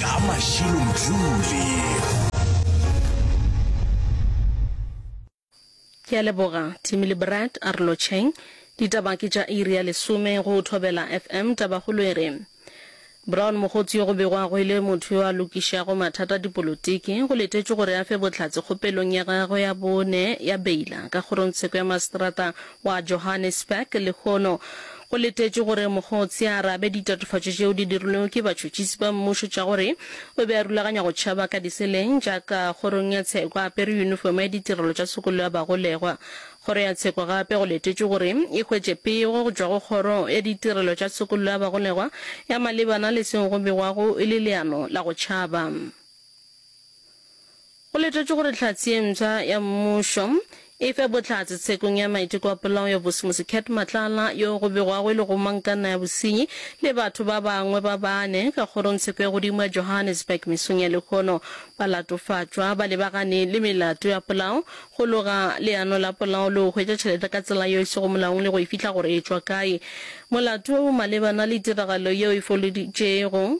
ka mašilo mthuli ke a leboga timile brad a re lotšheng ditaba ke tša iri ya lesome go thobela fm tabagolo e re brown mogotsi yo go begwago e le motho yo a lokišago mathata a dipolotiki go letetšwe gore a fe bohlatse kgopelong ya gagwe ya bone ya beila ka kgorongtsheko ya maseterata wa Johannesburg lehono. Go letetšwe gore mokgotse a arabe ditatofatšo tšeo di dirilwego ke batšhotšhisi ba mmušo tša gore o be a rulaganya go tšhaba ka diseleng tša ka kgorong ya tsheko a apere yunifomo ya ditirelo tša tshokolo ya bagolegwa. Kgoro ya tsheko gape go letetšwe gore e hwetše pego go tšwa go kgoro ya ditirelo tša tshokollo ya bagolegwa ya malebana le seo go begwago e le leano la go tšhaba. Go letetšwe gore Tlhatsi ye mpsha ya Mmušo e fe bohlatse tshekong ya maiteko a polao ya Bosimusi Cat Matlala yo go begwago e le go mang ka nna ya bosenyi le batho ba bangwe ba bane ka kgorongtsheko ya godimo ya Johannesburg mesong ya lehono ba latofatšwa ba lebagane le melato ya polao go loga leano la polao le go hwetša tšhelete ka tsela yeo e sego molaong le go e fihla gore e tšwa kae. Molato wo o malebana le tiragalo yeo e foloditšego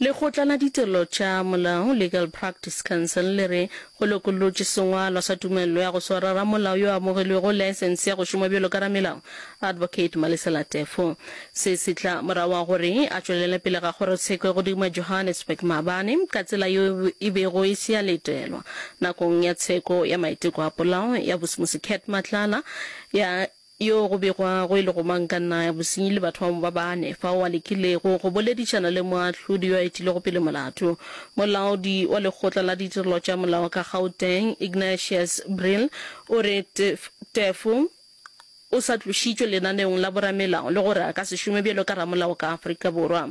Lekgotla la Ditirelo tša Molao, Legal Practice Council, le re go lokollotše sengwalwa sa tumello ya go swara ramolao yo a amogilwego laesense ya go šoma bjalo ka ramelao, Advocate Malisela Teffo. Se se tla morago ga gore a tšwelele pele ga kgorotsheko godimo ya Johannesburg maabane ka tsela yeo e bego e se ya letelwa nakong ya tsheko ya maiteko a polao ya Bosimusi Cat Matlala ya Yoo go begwago e lego mang ka naya bosenyi le batho ba mo ba bane, fao a lekilego go boledišana le moahlodi yo a etilego pele molato, molaodi wa Lekgotla la Ditirelo tša Molao ka Gauteng, Ignatius Brill, o re Teffo o sa tlošitšwe lenaneong la boramelao le gore a ka se šome bjalo ka ramolao ka Afrika Borwa.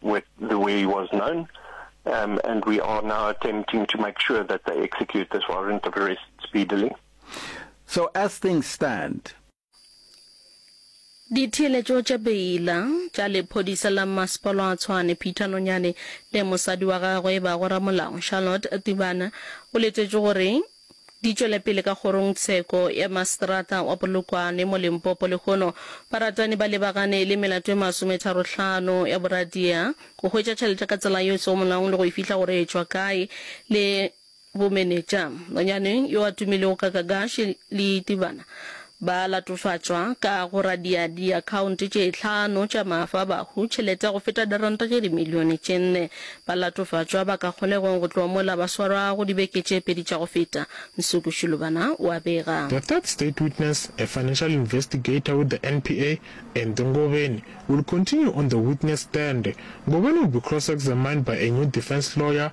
with the way he was known. Um, and we are now attempting to make sure that they execute this warrant of arrest speedily. So, as things stand, ditheeletšo tša beila tša lephodisa la masepalo a tshwane peter nonyane le mosadi wa gagwe ba go ramolao charlotte tibana o letetše gore Di tšwela pele ka kgorongtsheko ya maseterata wa Polokwane mo Limpopo lehono baratani ba lebagane le melato e masometharo-hlano ya boradia, go hwetša tšhelete ka tsela yeo e sego molaong le go e fihla gore e tšwa kae le bomenetša nonyane yo a tumilego ka Kagashi Liitibana Ba latofatšwa ka go radia diakhaonte tše hlano tša maafabahu tšhelete ya go feta diranta tše dimilione tše nne. Ba latofatšwa ba ka kgolegong go tloga mola ba swarwago dibeke tše pedi tša go feta, Nsuku Shilubana o a bega. The third state witness, a financial investigator with the NPA, Andy Ngobeni, will continue on the witness stand. Ngobeni will be cross-examined by a new defense lawyer,